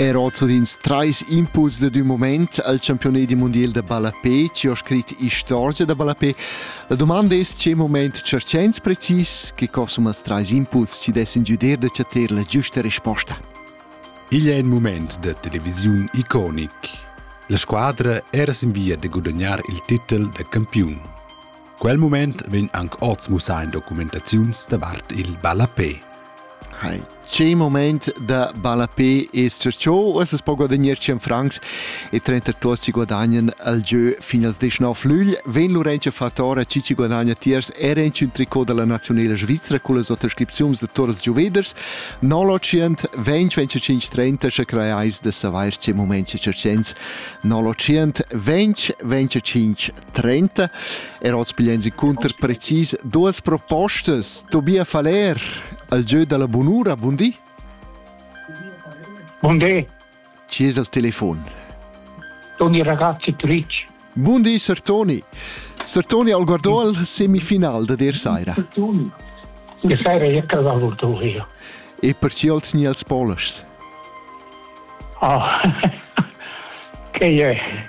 Er oz ins trais impuls dad un moment al campiunedi mondial da ballapé, ci ho scrit istorgia da ballapé. La domanda è c'è moment cercents precis che cosumas trais impuls ci dessin giuder da chatter la giusta risposta. Igl è in moment da televisiun iconic. La squadra era sin via da guadagnar il titel da campiun. Quel mument vegn anc oz mussà en documentaziuns davart il ballapè. Hai, che moment da ballapé è successo? Es es po guadagnar 100 francs e 32 si guadagnan al gieu fin als 19 lügl. Ven Lorenzo Fatora ci ci guadagna tiers era in un tricot della nazionale svizzera con le sottoscrizioni de Toras Giuveders. 900 20 25 30 se creais de saver che moment c'è 900 20 25 30 er oz pigliensi cunter precis duas propostas. Tobias Faller, al gieu dalla bunura, bundi? Bundi. Ci es al telefon? Toni ragazzi Twitch. Bundi, Sir Toni. Sir Toni al guardò al semifinal da der saira. Toni. Die Serie Jecker war wohl durch hier. E perciò al tni als Polish. Oh. che è?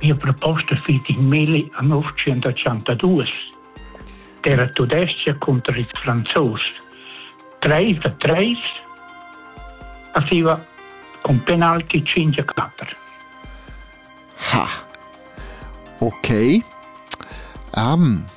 Mia proposta fit in milli a novantaduas. Era tudestga contra ils franzos. Treis da treis aveva con penalti 5 a 4. Ha. Ok. Um,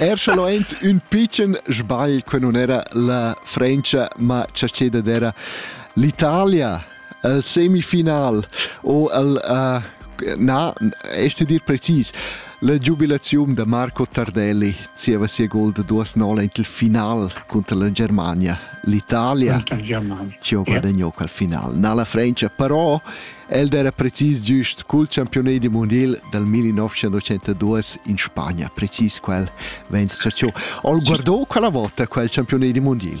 Er sche lo aint ün pitschen sbagl que nun era la Frencha, ma cha ceda d'era l'Italia el semifinal o el uh, na este dir precis la giubilaziun da Marco Tardelli zieva sia gol da duas nola in il final contro la Germania l'Italia ci ho guadagnato al final na la Francia però el era precis giust col campione di mondial dal 1982 in Spagna precis quel vens ciò ho guardato quella volta quel campione di mondial